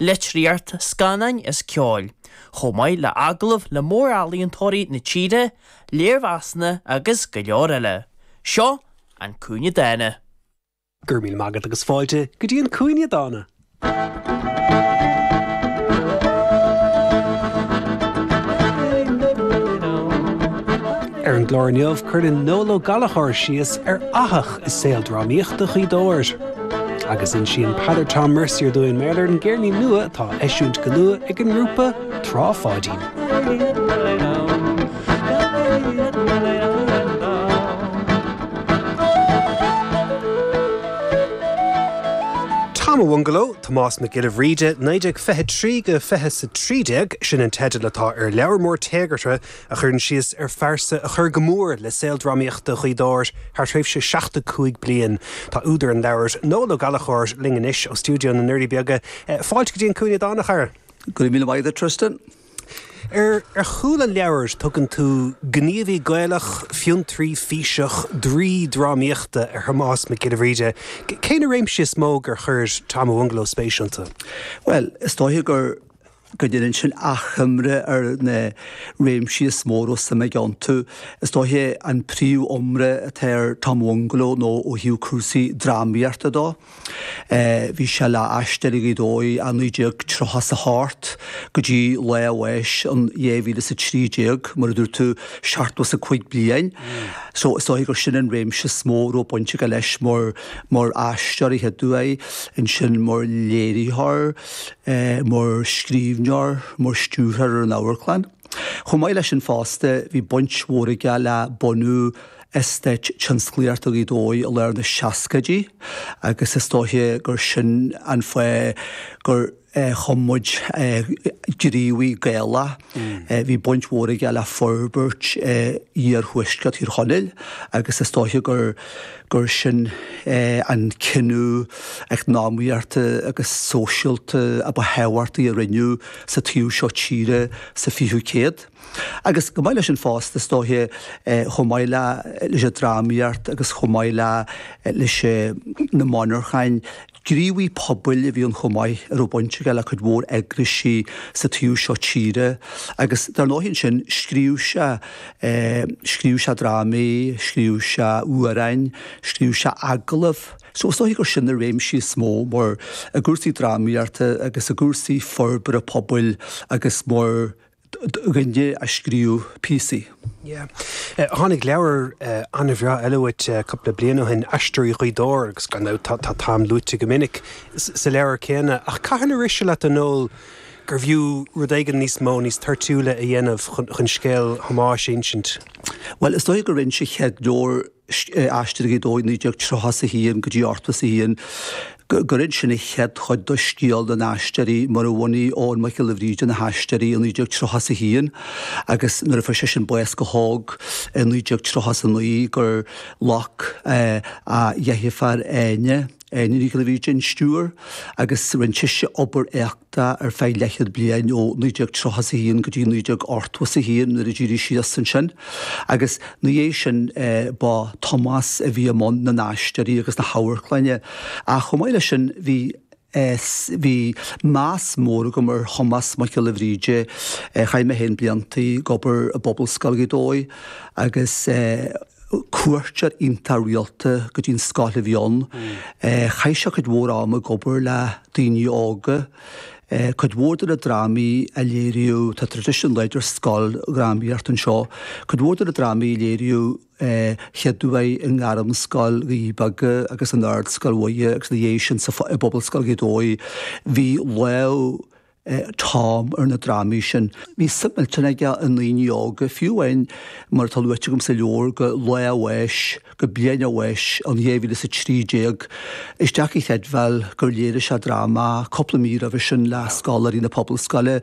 litríocht, scannáin is ceoil, chomh maith le agallaimh le mórealaíontóirí na tíre, léirmheasanna agus go leor eile. Seo An Cúinne Dána. Go raibh míle maith agat agus fáilte go dtí An Cúinne Dána! Ar an gclár inniu, cuireann Noel Ó Gallchóir síos ar fhathach i saol drámaíochta Ghaoth Dobhair. Agus insíonn Peadar Tom Mercier dúinn mar gheall ar an gcéirnín nua atá á eisiúint go luath ag an ngrúpa Trá Pháidín. Tom a' Bhungaló, Tomás Mac Giolla Bhríde, 1923-2013, sin an teideal atá ar leabhar mór téagartha a chuireann síos ar phearsa a chuir go mór le saol drámaíochta Ghaoth Dobhair thar thréimhse seachtó cúig bliain. Tá údar an leabhair, Noel Ó Gallchóir, linn anois ó stiúideo na nDoirí Beaga. Fáilte go dtí An Cúinne Dána, a chara. Go raibh míle maith agat, a Tristan. Ar chúl an leabhair, tugann tú 'gníomhaí Gaelach, fiontraí físeach, draoi drámaíochta' ar Thomás Mac Giolla Bhríde. Cé na réimsí is mó gur chuir Tom a' Bhungaló spéis iontu? Bhuel, is dóiche gur go ndéanann sin achoimre ar na réimsí is mó a raibh suim aige iontu. Is dóiche an príomhiomrá atá ar Tom a' Bhungaló nó ó thaobh cúrsaí drámaíochta dó. Bhí sé le hAisteoirí Ghaoth Dobhair ó 1938 go dtí lá a bháis in 2013, mar a dúirt tú, seachtó is a cúig bliain. So is dóiche gur sin an réimse is mó a raibh baint aige leis mar mar aisteoir a chéaduair. Ansin mar léiritheoir. mar scríbhneoir, mar stiúrthóir ar an amharclann. Chomh maith leis sin fosta, bhí baint mhór aige le bunú Eastát Tionsclaíochta Ghaoth Dobhair i lár na seascaidí agus is dóiche gur sin an fáth gur chum muid gníomhaí Gaelach. Bhí baint mhór aige le forbairt iarthuaisceart Thír Chonaill agus is dóiche gur sin an cinneadh eacnamaíochta agus sóisialta a ba thábhachtaí a rinneadh sa taobh seo tíre sa 20ú céad. Agus chomh maith leis sin fosta, is dóiche, chomh maith leis an drámaíocht agus chomh maith leis na monarchain, Gníomhaí pobail a bhí ann chomh maith a raibh baint aige le cuid mhór eagraisí sa taobh seo tíre agus dar ndóigh ansin scríobh sé, scríobh sé drámaí, scríobh sé amhráin, scríobh sé agallaimh. So is dóiche gur sin na réimsí is mó mar i gcúrsaí drámaíochta agus i gcúrsaí forbartha pobail agus mar a scríobh píosaí. Yeah. Tháinig leabhar an-bhreá eile uait cúpla bliain ó shin, Aisteoirí Ghaoth Dobhair, agus gan dabht tá Tom luaite go minic sa leabhar céanna. Ach cathain a rith sé leat, a Noel, gurbh fhiú rud éigin níos mó, níos toirtiúla a dhéanamh chun scéal Thomáis a insint? Bhuel, is dóigh gur scríobh. Aisteoirí Ghaoth Dobhair 1931 go dtí ochtó is a haon, gur inis sin an chéad chuid de scéal na n-aisteoirí mar a bhunaigh Eoghan Mac Giolla Bhríde na hAisteoirí i 1931 agus nuair a fuair seisean bás go hóg i 1939 gur ghlac a dheirféar Áine Nic Giolla Bhríde an stiúir agus rinne sise obair Tá ar feadh leathchéad bliain, ó 1931 go dtí 1981 nuair a d'éirigh sí as ansin, agus ina dhiaidh sin ba é Tomás a bhí i mbun na nAisteoirí agus na hAmharclainne. Ach chomh maith leis sin bhí bhí meas mór agam ar Thomás Mac Giolla Bhríde. Chaith mé féin blianta ag obair i bPobalscoil Ghaoth Dobhair agus cuairteoir iontach rialta go dtí an scoil a bhí ann. Chaith sé cuid mhór ama ag obair le daoine óga. Cuid mhór de na drámaí a léiríodh, tá tradition láidir scoildrámaíocht anseo, cuid mhór de na drámaí a léiríodh chéad uair i nGairmscoil Dhoirí Beaga agus in Ardscoil Mhuire agus ina dhiaidh sin sa i bPobalscoil Ghaoth Dobhair, bhí lámh Tom ar na drámaí sin. Bhí suim millteanach aige i ndaoine óga, fiú amháin, mar atá luaite agam sa leabhar, go lá a bháis, go bliain a bháis, in dhá mhíle is a trí déag. Is deacair a chreidbheáil gur léirigh sé dráma cúpla mí roimhe sin le scoláirí na Pobalscoile.